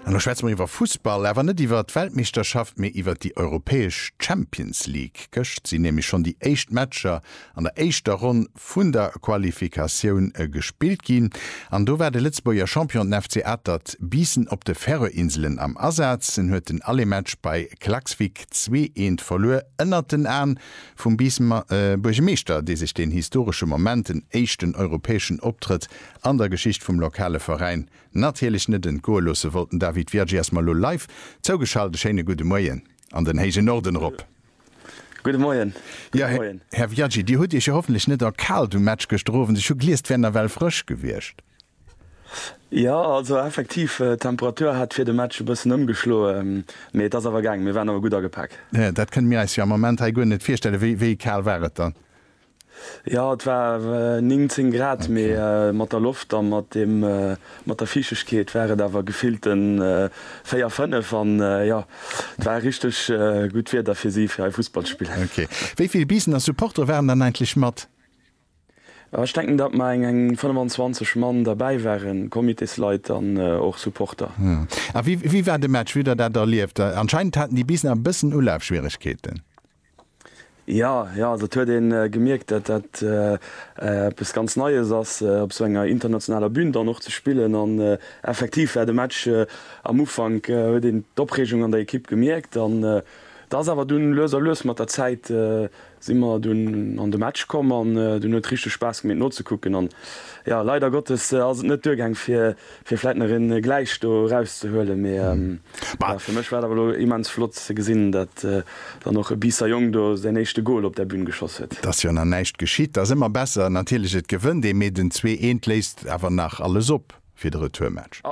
An da schwätze mer iwwer Fussball, awer net iwwer d'Weltmeeschterschaft, mee iwwer déi europäesch Champions League. Gëscht sinn nämlech schonn déi éischt Matcher an der éischter Ronn vun der Qualifikatioun gespillt ginn. An do war de Lëtzebuerger Champion, den FC Atert Biissen, op de Färöerinselen am Asaz. En huet den Aller-Match bei Klaksvík zwee eent verluer, ënnert den Aen vum Biissemer Buergemeeschter, dee sech deen historesche Moment, den éischten europäeschen Optrëtt An der Geschicht vum lokale Veräin natierlech net entgoe loosse wollt. Den David Virgi ass mer elo live zougeschalt. E schéine gudde Moien an den héijen Norden erop. Gudde Moien. Jo, Här Virgi, Dir hutt Iech jo hoffentlech net erkaalt um Match gëschter Owend. Ech hu gliess, et wär nawell frësch gewiescht. Jo, also effektiv, d'Temperatur hat fir de Match e bëssen ëmgeschloe, mee et ass awer gaangen. Mir waren awer gutt agepak. Dat kënne mir eis jo am Ament hei guer net virstellen. Wéi kal war et dann? Jo, et war 19 Grad, mee mat der Loft a mat dem, mat der Fiichtegkeet war et awer gefillte 4, 5 an jo, et war richteg gutt Wieder fir si fir hei Fussball ze spillen. Ok. Wéi vill Biisener Supportere waren dann eigentlech mat? Jo, ech denken, datt mer eng 25 Mann derbäi waren, Comitésleit an och Supporter. A wéi war de Match? Wéi hutt der dat erlieft? Anscheinend haten déi Biisener e bëssen Ulafschwieregkeeten. Jo, jo, also et huet ee gemierkt, datt dat eppes ganz Neies ass, op esou enger internationaler Bün dann och ze spillen. An effektiv war de Match am Ufank, huet een d'Opreegung an der Ekipp gemierkt. An et ass awer dunn lues a lues, mat der Zäit si mer dunn an de Match komm an dunn huet richteg Spaass gemeet nozekucken. An jo, leider Gottes ass et net duergaang fir. Fir vläit nach een Gläich do erauszehuelen, mee fir mech war et awer elo immens flott ze gesinn, datt dann och e Biisser Jong do säin éischte Goal op der Bühn geschoss huet. Dass jo nach näischt geschitt, dass ëmmer besser. Natierlech, et gewënnt ee, mee den zwee eent léist awer nach alles op fir de Retourmatch.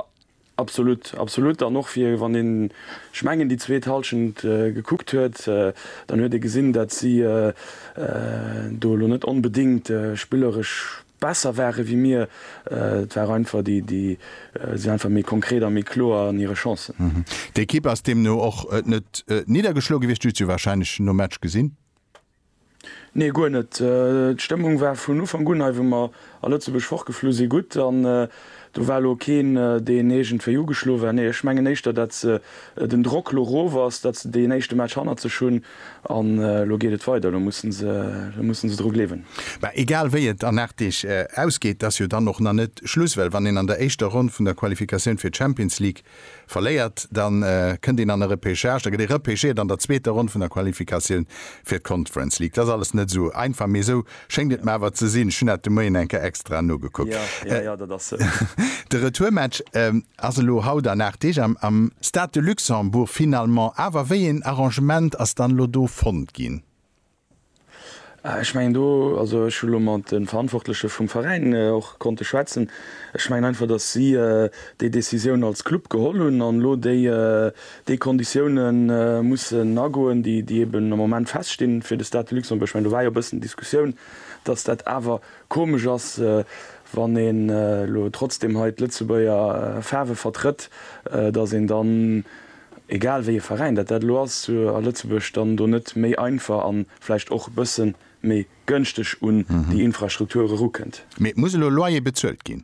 Absolut, absolut. An och fir wann een, ech mengen, déi zweet Hallschent gekuckt huet, dann huet ee gesinn, datt si do elo net onbedéngt spilleresch besser ware wéi mir, et war einfach, déi sinn einfach méi konkret a méi kloer an hire Chancen. D'Ekipp ass deemno och net niddergeschloe gewiescht, du hues se jo warscheinlech nom Match gesinn? Nee, guer net. D'Stëmmung war vun Ufank un, hei wou mer a Lëtzebuerg fortgeflu sinn, gutt an do war elo keen, deen iergendwéi ugeschloe war. Nee, ech mengen éischter, datt den Drock elo erof ass, datt se deen éischte Match hannert sech hunn An elo geet et weider, elo mussen se, elo mussen se dru gleewen. Mä egal wéi et an 8 Deeg ausgeet, ass jo dann och nach net Schluss, well wann een an der éischter Ronn vun der Qualifikatioun fir d'Champions League verléiert, da kënnt een an e Repechage, da gëtt ee repechéiert an der zweeter Ronn vun der Qualifikatioun fir d'Conference League. Dat ass alles net esou einfach, mee esou schéngt et mer awer ze sinn. Ech hunn dat de Moien eng Kéier extra nogekuckt. De Retourmatch Ass elo haut an 8 Deeg am. Stade de Luxembourg finalement. Awer wéi een Arrangement ass dann elo do fonnt ginn? Ech mengen do, also ech hu lo mat de Verantwortleche vum Veräin och konnte schwätzen, ech mengen einfach, datt si déi Décisioun als Club geholl hunn an elo déi déi Konditioune mussen agoen, déi eben am Moment feststinn fir de Stade de Luxembourg. Ech mengen do war jo e bëssen Diskussioun, datt dat awer Komesch ass, wann een elo trotzdem hei d'Lëtzebuerger Faarwe vertrëtt, datt een dann, egal wéi e Veräin dat dat elo ass, zu a Lëtzebuerg dann do net méi einfach a vläicht och e bësse méi gönschteg un déi Infrastruktur erukënnt. Mee et muss elo Loyer bezuelt ginn.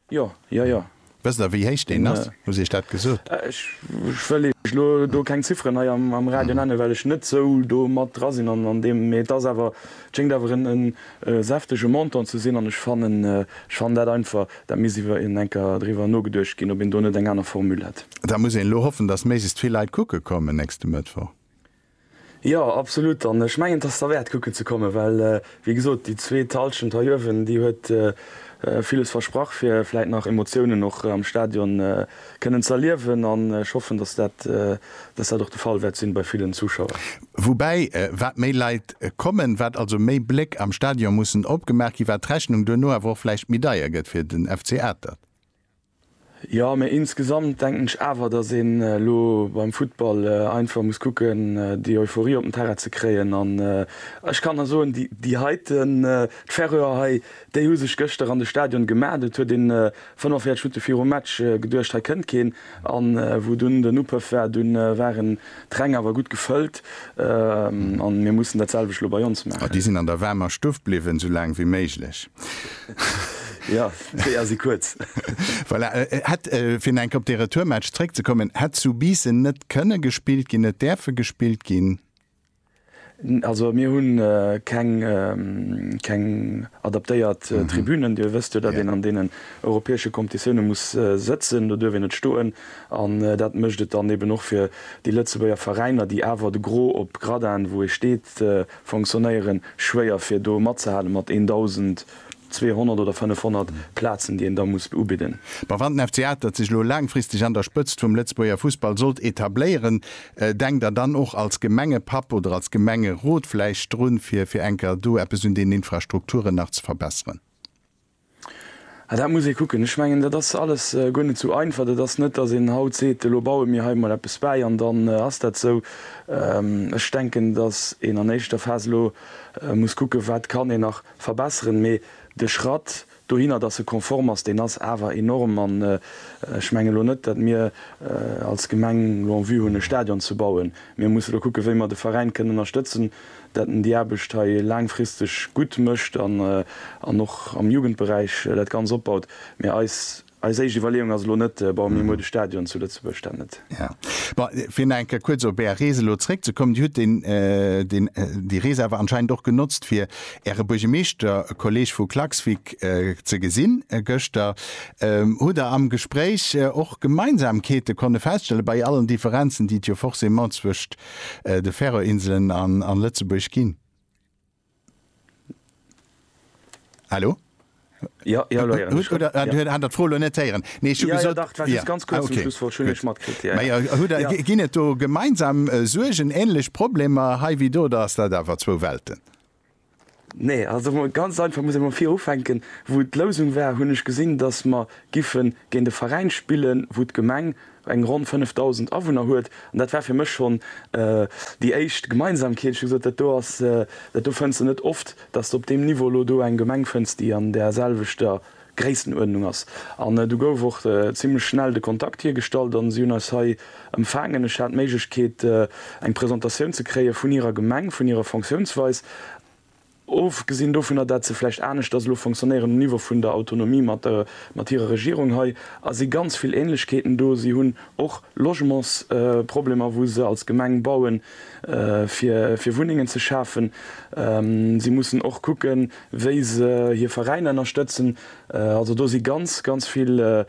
Jo, jo, jo. Wësst Der, wéi héich deen ass? Hutt Iech dat gesot? Ech wëll Iech elo do keng Zifferen hei am Radio nennen, well ech net esou do mat dra sinn an deem. Mee et ass awer, et schéngt awer en säftege Montant ze sinn. An ech fannen, ech fannen dat einfach, dat misst iwwer een enker driwwer nogeduecht ginn, ob een do net eng aner Formule hätt. Da muss een elo hoffen, dass méiglechst vill Leit kucke kommen nächste Mëttwoch. Jo, absolut. An ech mengen, et ass derwäert kucken ze kommen, well wéi gesot, déi zweet Halschent hei uewen, déi huet villes versprach fir vläit nach Emotiounen och am Stadion kënnen ze erliewen. An ech hoffen, datt dat datt dat och de Fall wäert sinn bei villen Zuschauer. Woubäi, wat méi Leit kommen, wat also méi Bléck am Stadion mussen opgemaach ginn, wat d'Rechnung duerno awer och vläicht méi deier gëtt fir den FC Atert. Jo, mee insgesamt denken ech awer, dass een elo beim Futtball einfach muss kucken, déi Euphorie op den Terrain ze kréien. An ech kann der soen, déi heiten, d'Färöer hei, déi hu sech gëschter an de Stadion gemat. Et huet een 45 Minutte virum Match geduecht, hei kënnt keen. A wou dunn den Upëff war, du ware D'Räng awer gutt gefëllt an mir mussen dat selwecht lo bei ons maachen. A déi sinn an der waarmer Stuff bliwwen, sou laang wéi méiglech. Jo, d'Weeër si kuerz. Voilà, hätt, fir nach eng Kéier op dee Retourmatch zréckzekommen, hätt zu Biissen net kënne gespillt ginn, net däerfe gespillt ginn? Also mir hunn keng keng adaptéiert Tribünen. Dir wësst jo, datt een an deenen europäesche Competitioune muss sëtzen, do duerf een net stoen. An dat mécht et dann eben och fir déi Lëtzebuerger Veräiner, déi awer de Gros op Gradin, wou ee steet, fonctionnéieren, schwéier fir do matzehale mat 1.000. 200 oder 500 Plazen, déi een da muss ubidden. Ma wann den FC Atert sech elo laangfristeg an der Spëtzt vum Lëtzebuerger Fussball sollt etabléieren, denkt Der dann och als Gemengepapp oder als Gemengerot vläicht drun, fir fir enker do eppes un deenen Infrastrukturen nach ze verbesseren? Ah, dat muss ee kucken. Ech mengen, dat ass alles guer net esou einfach. Dat ass net, datt een haut seet, elo baue mir hei emol eppes bäi an dann ass dat esou. Ech denken, datt een an éischter Phas elo muss kucken, wat kann een nach verbesseren, mee de Schratt dohinner, dass e konform ass, deen ass awer enorm an ech menge lo net, dat mir als Gemeng lo en Vue hunn e Stadion ze bauen. Mir musse lo kucke wéi mer de Veräin kënnen ënnerstëtzen, dat en déi Aarbecht hei laangfristeg gutt mécht an och am Jugendberäich dat ganz opbaut, mee eis Eis éischt Iwwerleeung ass elo net, bon, mir muer de Stadion zu Lëtzebuerg, dat net. Ja, bon, fir nach eng Kéier kuerz op Är Rees elo zréckzekommen, Dir hutt deen, deen, déi Rees awer anscheinend och genotzt, fir Äre Buergemeeschterkolleeg vu Klaksvík ze gesinn gëschter. Hutt Der am Gespréich och Gemeinsamkeete konne feststellen, bei allen Differenzen, déi et jo forcément zwëscht de Färöerinselen an Lëtzebuerg ginn? Hallo? Jo, jo, elo héieren ech. Oder du hat der d'Fro lo net héieren? Nee, ech hu gesot. Jo, jo, dach, et war just ganz kuerz zum Schluss, wollt ech net matkritt. Mä jo, hutt der, ginn et do gemeinsam Suergen, ähnlech Problemer hei wéi do, oder ass dat awer zwou Welten? Nee, also mol ganz einfach, muss ech mol vir ufänken, wou d'Lousung war, hunn ech gesinn, datt mer giffen géint e Veräin spillen, wou d'Gemeng, eng ronn 5.000 Awunner huet. An dat war fir mech schonn déi éischt Gemeinsamkeet. Ech hu gesot, dat do ass, dat do fënns de net oft, dass de op deem Niveau elo do eng Gemeng fënns, déi an där selwechter Gréissenuerdnung ass. An du gouf och zimlech schnell de Kontakt hiergestallt a si hunn eis hei empfaangen. Ech hat d'Méiglechkeet, eng Presentatioun ze kréie vun hirer Gemeng, vun hirer Fonctiounsweis. Ofgesinn dovunner, dat se vläicht aneschters elo fonctionnéieren um Niveau vun der Autonomie mat hirer Regierung hei, a si ganz vill Ähnlechkeeten do. Si hunn och Logementsproblemer, wou se als Gemeng bauen, fir Wunnengen ze schafen. Si mussen och kucken, wéi se hir Veräiner ënnerstëtzen. Also do si ganz, ganz vill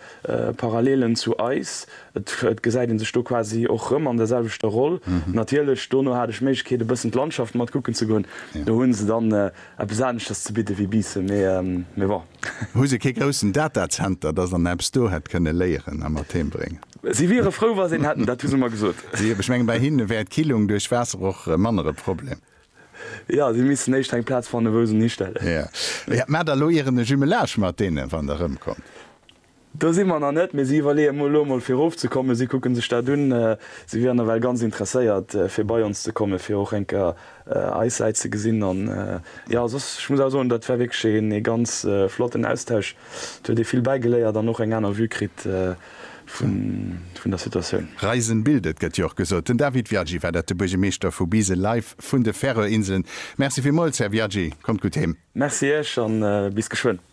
Parallelen zu eis, Et gesäit een sech do quasi och rëm an der selwechter Roll. Natierlech, dono hat ech d'Méiglechkeet e bëssen d'Landschaft mat kucken ze goen. Do hu se dann eppes aneschters ze bidde wéi Biissen, mee bon. Hu se kee groussen Datazenter, dass een eppes do hätt kënne léieren a mat heem bréngen? Si wiere frou, wa se een hätten, dat hu se mer gesot. Ech mengen, bei hinne wär d'Killung duerch Waasser och manner e Problem. Jo, si missten éischt eng Plaz fanne wou se en histellen. Jo, mä da loieren e Jumelage mat deene wann Der erëmkommt. Do si mer nach net, mee si iwwerleeë mol elo emol fir erofzekommen. Si kucke sech dat un. Si wieren nawell ganz interesséiert fir bei ons ze kommen, fir och eng Kéier eis Säit ze gesinn. An jo, soss, ech muss awer soen, dat war wierklech ee ganz flotten Austausch. Et huet ee vill bäigeléiert an och eng aner Vue kritt vun der Situatioun. Reisen bildet, gëtt jo och gesot. Den David Viaggi war dat, de Buergemeeschter vu Bisel, live vun de Färöerinseln. Merci villmools, Här Viaggi. Kommt gutt heem. Merci Iech a bis geschwënn.